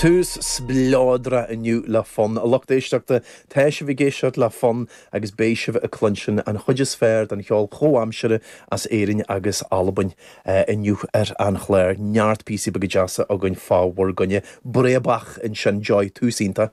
Tús spleodrach inniu le fonn. A lucht éisteachta, tá sibh ag éisteacht le fonn agus beidh sibh ag cluinstin an chuid is fearr den cheol comhaimseartha as Éirinn agus Albain inniu ar an chlár. Neart píosaí beaga deasa againn fá bhur gcoinne. Breabach ansin, ar ndóigh, tús iontach.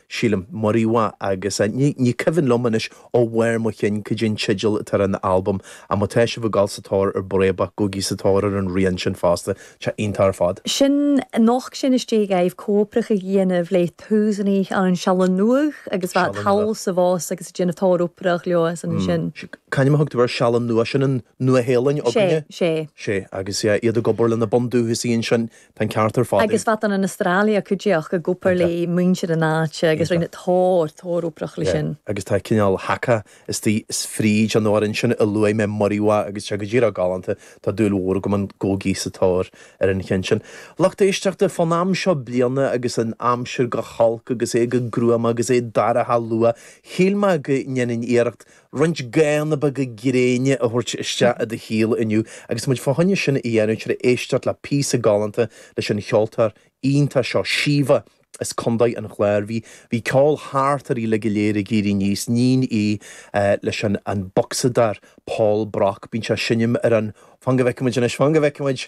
sílim. Muriwai agus ní cuimhin liom anois ó bharr mo chinn cad é an teideal atá ar an albam ach má tá sibh ag dul sa tóir ar Breabach gabhaigí sa tóir ar an rian sin fosta, tá sé iontach ar fad. Sin, tháinig sin as giota oibre a bhí á dhéanamh le tús acu insan Sealainn Nuadh agus bhí siad thall is abhus agus ag déanamh tuilleadh oibre leo ansin. C'ainm a thugtar ar Sealainn Nuadh, sin an Nua-Shéalainn againne? Sé, sé. Sé agus iad ag obair leis na bundúchasaigh ansin Tá an ceart ar fad aige. Agus fosta san Astráil a chuaigh siad ag obair le muintir na háite agus rinne tuilleadh, tuilleadh oibre leis sin. Agus tá cineál haka istigh fríd an amhrán ansin a luaigh mé Muriwai agus tá sé go díreach galánta, tá dúil mhór agam ann. Gabhaigí sa tóir ar an cheann sin. Lucht éisteachta, fán am seo bliain agus an aimsir go holc agus é go gruama agus é dorcha luath, shíl mé go ndéanfainn iarracht roinnt gathanna beaga gréine a thabhairt isteach i do shaol inniu agus muid fá choinne sin a dhéanamh tar éis éisteacht le píosa galánta leis an cheoltóir iontach seo Síomha as Condae an Chláir. Bhí bhí ceol thart uirthi uilig go léir agus í ag éirí aníos, iníon í leis an an bocsadóir Paul Brock. Bíonn sé ag seinm ar an Fan go bhfeicfimid anois Fan go bhfeicfimid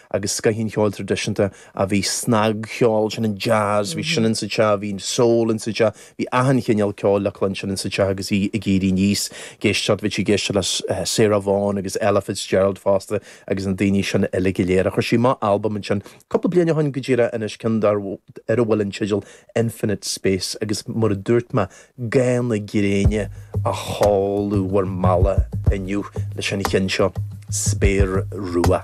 agus scoth an cheoil tradisiúnta a bhí snagcheol, sin an jazz, bhí sin insa teach, bhí an soul insa teach, bhí achan chineál ceoil le cluinstin insa teach agus í ag éirí aníos, ag éisteacht, bhí sí ag éisteacht le Sarah Vaughan agus Ella Fitzgerald fosta agus na daoine sin uilig go léir. Chuir sí amach albam ansin cúpla bliain ó shoin go díreach anois, ceann dar, ar a bhfuil an teideal Infinite Space agus mar a dúirt mé, Gathanna gréine ag teacht bhur mbealach inniu leis an cheann seo, spéir rua.